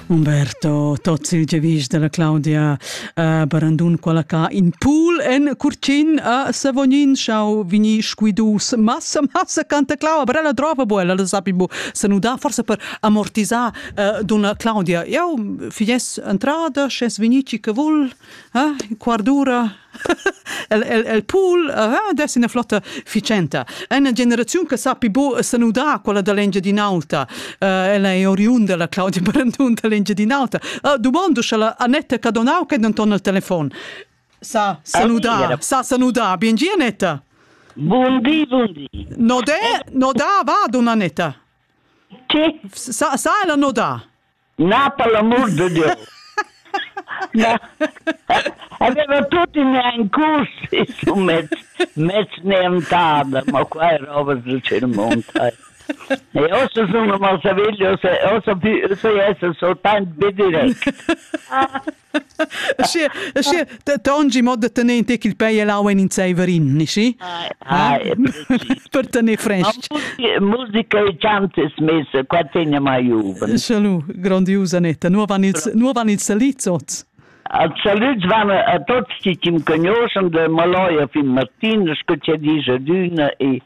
Umberto Tozzi, gevis della Claudia uh, Barandun, quella ca in pool en Curcin a Savognin schau vini squidus massa massa canta Claudia, aber ella drova bu, ella sapi bu se nuda forse per amortisar uh, donna Claudia. Eu fies entrada, sces vinici che vul, eh? quardura el, el, el pool uh, dess ina flotta ficenta. Ena generaziun che sappi bo sanudar quella da l'Engiadin'Alta, uh, ella è oriunda la Claudia Brandun da l'Engiadin'Alta. Uh, domando sche la Annetta Cadonau che è denton al telefon sa saludar, sa saludar. Bien dia, Annetta. Buondì, buondì. Nodè, nodà va, donna Annetta. Sì. Sa, sa la nodà? Na, per l'amur de Dieu! Na, aveva tut in ein curs su mez, mez neantada, ma qua è roba del Cirmont. E ossa sono mal saveglio, se ossa più, se esse so tant bidirect. Tangi mod da tener in tec il pei e l'aua en in zeiverin, nici? Per tener fresc. Musica e chantes mes qua tegna mai juven. Salut, grandiusa Netta. Nu van ils, nu van ils salits oz? Als salüts van a tots chi chi'm conoschan del Maloja fin Martin, sco chia dice d'üna e